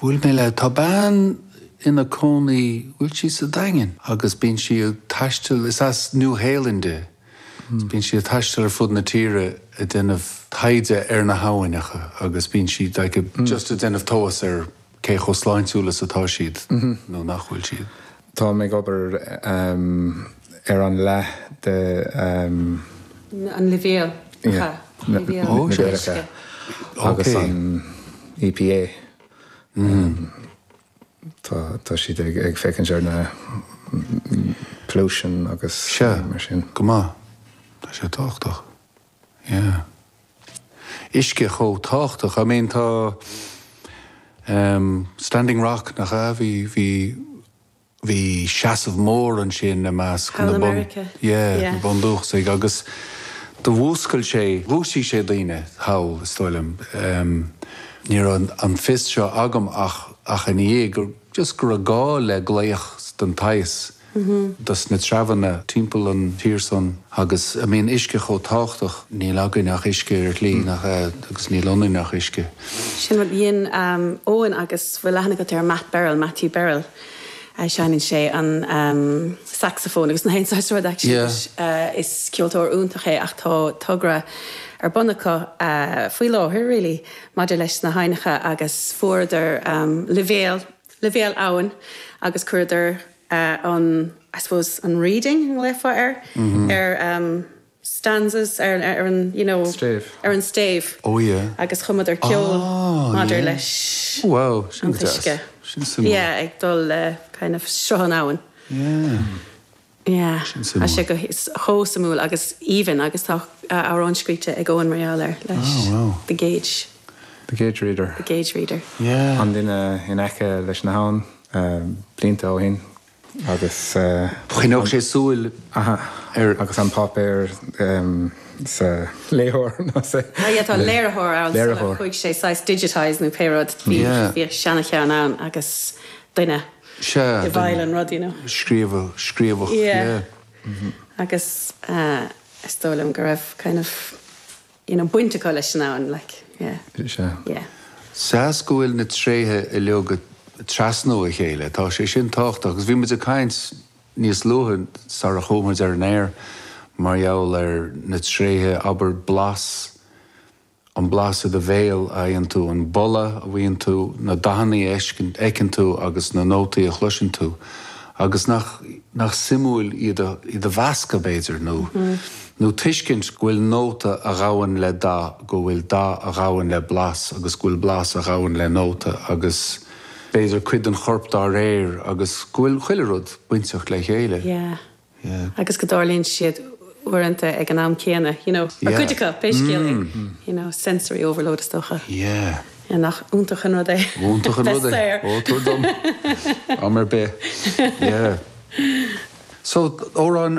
Bhuail mé le, tá bean ina cónaí, bhfuil sí sa Daingean? agus bíonn sí ag taisteal, is as New Shéalainn di, is bíonn sí ag taisteal ar fud na tíre ag déanamh taighde ar na habhainneacha agus bíonn sí like just ag déanamh tomhais ar cé chomh sláintiúil is atá siad nó nach bhfuil siad. Táim ag obair ar an leath de agus an EPA. Tá siad ag féachaint ar na pollution agus mar sin. Go maith. Tá sé tábhachtach. Yeah. Uisce chomh tábhachtach. I mean tá ehm Standing Rock nach ea? Bhí, bhí, bhí seasamh mór ansin i measc na bun, yeah, na bundúchasaigh agus do mhúscail sé, dhúisigh sé daoine thall is dóigh liom. Ehm ní raibh an fios seo agam ach, ach ina dhiaidh, just go raibh gá le glaoch den tsaghas. dos na treabhanna timpeall an tír san agus I mean uisce chomh tábhachtach. Níl againn ach uisce ar shlí nach ea agus níl ionainn ach uisce. Sin rud a dhein Eoin agus bhfuil aithne agat air, Matt Berrill, Matthew Berrill. Seineann sé an saxophone agus na haon saghas rud actually leis. Is ceoltóir iontach é ach tá togra ar bun acu faoi láthair really maidir leis na haibhneacha agus fuaireadar leibhéal leibhéal abhann agus chuireadar an I suppose an reading an léamh ar ar stanzas ar an you know ar an stéibh agus chumadar ceol maidir leis an t-uisce yeah ag dul le kind of sruth an abhann. Yeah. Yeah suimiúil. Tá sé chomh suimiúil agus aoibhinn agus tá amhrán scríofa ag Eoin mar gheall air leis, The Gauge. The Gauge Reader. The Gauge Reader. An duine in aice leis na habhann, blianta ó shin agus an. Choinneodh sé súil ar. Agus an páipéar sa léitheoir nó sa. Yeah, tá léiritheoir ann. Léiritheoir. Chuaigh sé saghas digitise nó pé rud. Bhí seana-cheann ann agus duine. Sea, i bhfeighil an rud, you know. scríobhadh, scríobhadh, yeah. Yeah, mhm. Agus is dóigh liom go raibh kind of, you know, baint acu leis sin ann, like, yeah. Sea. Yeah. Sea 's go bhfuil na tréithe uilig ag trasnú a chéile, tá sé sin tábhachtach. Agus bhí muid ag caint níos luaithe, sara chuamar ar an aer, mar gheall ar na tréithe, abair, blas, an blas i do bhéal a fhaigheann tú, an boladh a mhothaíonn tú, na dathanna a fheiceann tú agus na nótaí a chloiseann tú. Agus nach suimiúil iad a mheascadh, b'fhéidir, nó nó tuiscint go bhfuil nóta a ghabhann le dath, go bhfuil dath a ghabhann le blas agus go bhfuil blas a ghabhann le nóta agus, b'fhéidir, cuid den chorp dá réir agus go bhfuil chuile rud bainteach le chéile. Yeah. agus go dtarlaíonn siad uaireanta ag an am céanna, you know, nó cuid acu, pé scéal é, you know, sensory overload is dócha. Yeah. Nach iontach an rud é? Iontach an rud é. Bheith saor. Ó, tabhair dom am ar bith. Yeah. So, amhráin